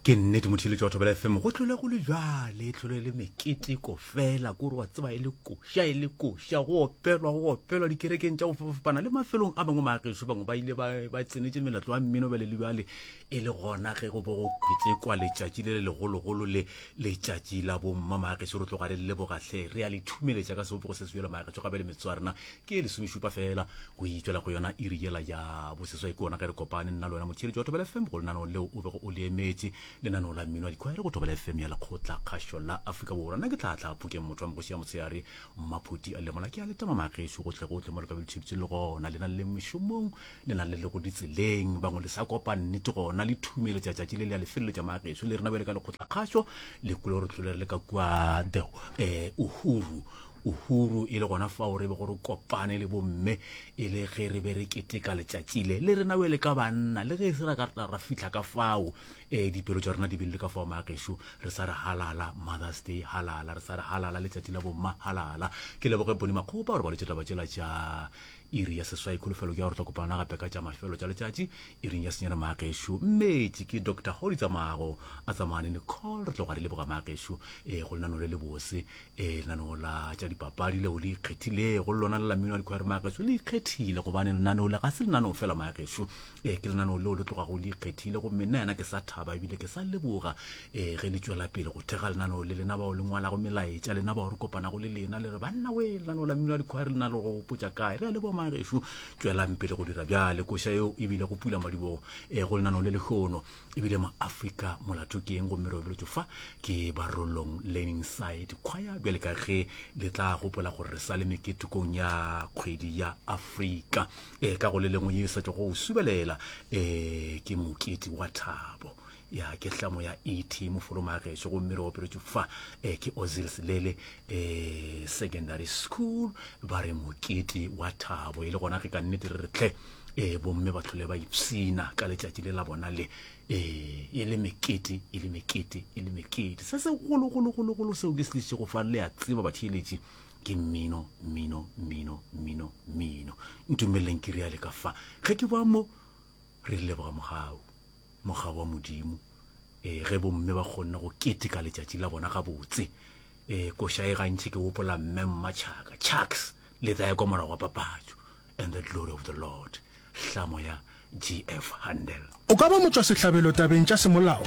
ke nnete motheletši batho bela fm go tlole go le bjale e tlole le meketeko fela kore wa tseba e le koša e le koša go opelwa go opelwa dikerekeng tša go fapafapana le mafelong a mangwe maageso bangwe ba ile ba tsenetse melatlo wa mmino bjale le bjale e le gona ge go bo go kwetekwa letšatši le le legologolo le letšatši la bomma maageso re tloga re lebogatlhe re a le thumeletša ka sebopego se se bjalo maageso gape le metso ya rena ke e lesomešupa fela go itšwela go yona iri yela ya boseswai ke ona ge re kopane nna le wena motheeletši wa thobela fm go lenaneo leo o bego o le emetše lenaneo la mmino wa dikgwere go thobela fm ya lekgotla kgašo la afrika borwa nna ke tla tla phokeng motho wa mogoši ya motsheare mmaphoti a lemola ke a letama magešo gotle gotle mo le ka be le tsheditse le gona le na le mešomong le na le le go ditseleng bangwe le sa kopa nnete gona le thumelo tša tšatši le le ya lefeleletša magešo le rena bjale ka lekgotla kgašo le kule gore tlole re le ka kua the eh, uhuru Uhuru e le gona fao re bego re kopane le bomme e le ge re be re keteka letšatši le le rena wele ka banna le ge e se ra ka tla ra fihla ka fao um dipelo tša rena di be le ka fao maagešo re sa re halala mothers day halala re sa re halala letšatši la bomma halala ke leboge boni makgopa gore ba lwetše taba tšela tša iri ya seswai kholofelo ke ya gore tla kopana gape ka tša mafelo tša letšatši iring ya senyana maagešo mmetše ke doctor godi tsamago a tsamane nicole re tloga re leboga maagešo um go lenano le le bose e lenaneo la tša dipapadi leo le ikgethilego le lona le lamino ya dikhware mageso le ikgethile gobane lenaneo le ga se lenaneo fela mageso e ke lenaneo leo le tlogago le ikgethile gomme nna yena ke sa thaba ebile ke sa leboga e ge le tšwela pele go thega lenaneo le lena bao le ngwalago melaetša lena bao re kopanago le lena le re banna we lenaneo la mino ya dikhware lena le go potsa kae re a leboga mageso tšwelang pele go dira bjale koša eo ebile go pula madibogo e go lenaneo le lehono ebile maafrika molato ke eng gomme re obeletšo fa ke barolong learning side khwaya bjale ka ge le tla gopola gore re sa le meketekong ya kgwedi ya afrika e ka go le lengwe ye e sa tšwa go subelela e ke mokete wa thabo ya ke hlamo ya et mofolomageso gomme re opeletšo fa e ke ozil selele eh, secondary school ba re mokete wa thabo e le gona ge ka nnete re re tlhe e bomme ba tlhole ba ipsina ka letšatši le la bona le ee e le mekete e le mekete e le mekete se se gologologologolo seo ke se tliše go fa le a tseba batheeletši ke mmino mmino mmino mmino mmino ntumeleleng ke reale ka fa ge ke ba mo Re di leboga mogau, mogau wa Modimo, e, ge bomme ba kgonne go keteka letšatši la bona gabotse. E, koša e gantši ke wopola mme mma Chaka, Chucks, le tla ya kwa morago wa papatšo, and the glory of the Lord, hlamo ya G. F. Handel. O ka ba motšwasehlabelo tabeng tša semolao,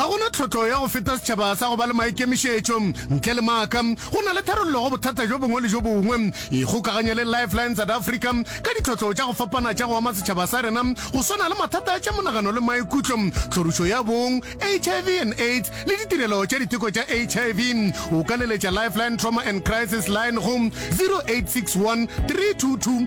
Ga go na tlhotlo ya go feta setšhaba sa go ba le maikemišetšo. Ntle le maaka, go na le tharollo go bothata bjo bongwe le bjo bongwe. Ikgokaganye le Lifeline South Africa ka ditlhotlo tša go fapana tša go ama setšhaba sa rena, go swana le mathata a tša monagano le maikutlo, tlhorišo ya bong, HIV and AIDS, le ditirelo tša diteko tša HIV. O ka leletša Lifeline Trauma and Crisis Line go 0861 322